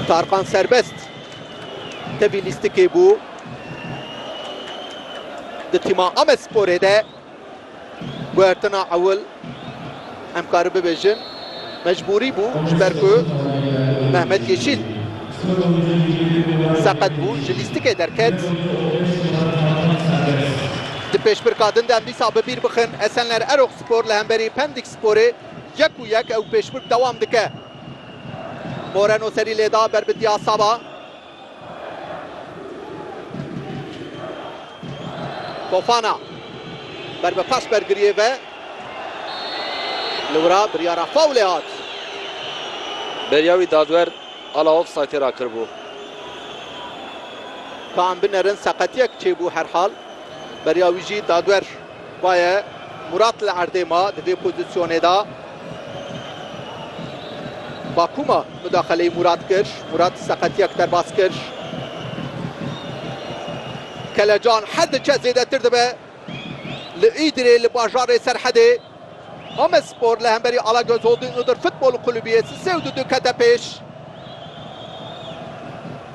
Tarkan serbest tevî lîstikê bû di tîma Amesporê de guhertina ewil em kari bibêjin mecbûrî bû ji ber ku Mehmet Yeşîl seqet bû ji lîstikê derket. Di pêşbirka din de em dîsa bi bîr bixin Esenler Erok Spor li hemberî Pendik Sporê Yek û yek ew pêşbirk dewam dike. Moreno serî lêda ber bi Diasaba. Fofana ber bi paş bergiriyê ve. Li wira biryara fawlê hat. Beriya wî dadwer ala ofsaytê re kiribû. Ka em binerin seqetiyek çêbû herhal beriya wî jî dadwer. Baye Murat li erdê ma di vê pozisyonê de. Bakuma mudaxeleyî Murat kir. Murat seqetiyek derbas kir. Kelecan her diçe zêdetir dibe. Li Îdirê li bajarê Serhedê Amedspor li hemberî Alagöz Holding Iğdır Futbol Kulübü yê sê û du dikete pêş.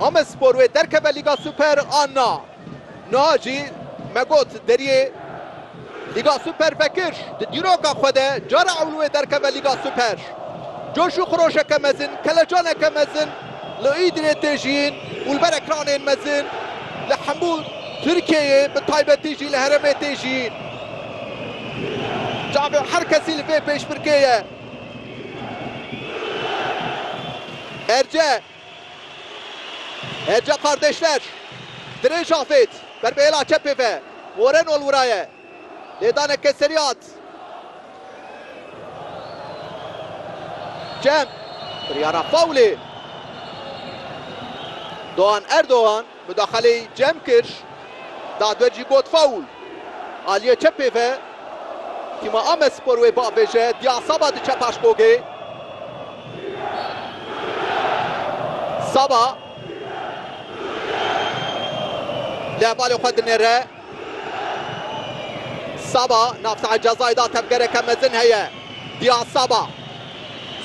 Amedspor wê derkeve Lîga Super a na. Niha jî me got deriyê Lîga Super vekir di dîroka xwe de cara ewl wê derkeve Lîga Super. Coş û xiroşeke mezin, kelecaneke mezin li Îdirê tê jiyîn û li ber ekranên mezin li hemû Tirkiyeyê bi taybetî jî li herêmê tê jiyîn. Çavê her kesî li vê pêşbirkê ye. Erce. Hêrca Kardeşler, Dirêj Afêt ber bi hêla çepê ve Moreno elwiraye, lêdaneke serî hat cem, biryara fawlê Doğan Erdoğan. Mudaxaleyî cem kir, dadwer jî got faul. Aliyê çepê ve tîma Amedspor wê biavêje, Diya Saba diçe paş bogê. Saba li hevalê xwe dinêre. Saba nav sahê cezayê da tevgereke mezin heye. Diya Saba.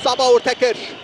Saba orte kir.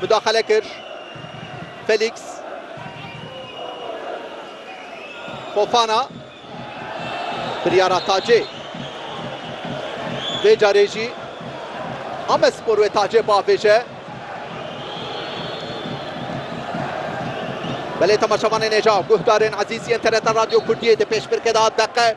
Mudaxele kir Felîks. Fofana biryara Tacê. Vê carê jî Amedspor wê Tacê biavêje. Belê temaşevanên êja, guhdarên ezîz yên TRT Radyo Kurdiyê di pêşbirkê de hat deqe.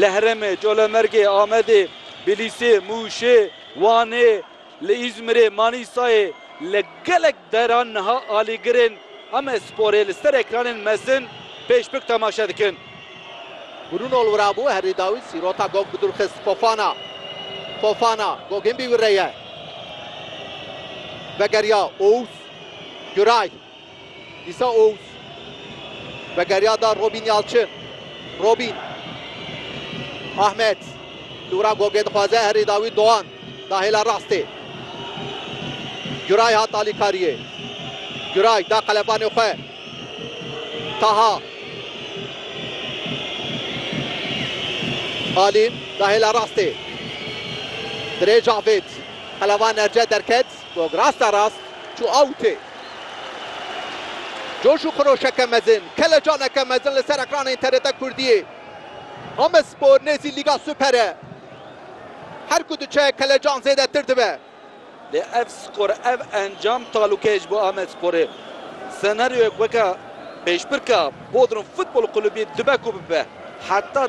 Li Herêmê, Colemêrgê, Amedê, Bilîsê, Mûşê, Wanê, li Îzmîrê, Manîsayê li gelek deran niha alîgirên ame sporê li ser ekranên mezin pêşbik temaşe dikin. Bruno li wira bû, herî dawî sîrota Gog bi dûr xist. Fofana. Fofana. Gogên bî wire ye. Vegeriya. Owûs. Güray. Dîsa Oğuz vegeriya da Robîn Yalçin. Robîn. Ahmet. Li wira Gogê dixwaze herî dawî Doğan. Da hêla rastê. Güray hat alîkariyê. Güray da qelebanê xwe. Taha. Alîn da hêla rastê. Dirê Cavêt. Qeleban erce derket. Gog rasta rast çû awtê. Coş û xiroşeke mezin, kelecaneke mezin li ser ekranên TRT Kurdiyê. Amedspor nêzî Lîga Super e. Her ku diçe kelecan zêdetir dibe. Lê ev skor, ev encam talûkeyê ji bo Amedsporê. Senaryoyek weke pêşbirka Bodrum Futbol Kulubî dibe ku bibe. Heta.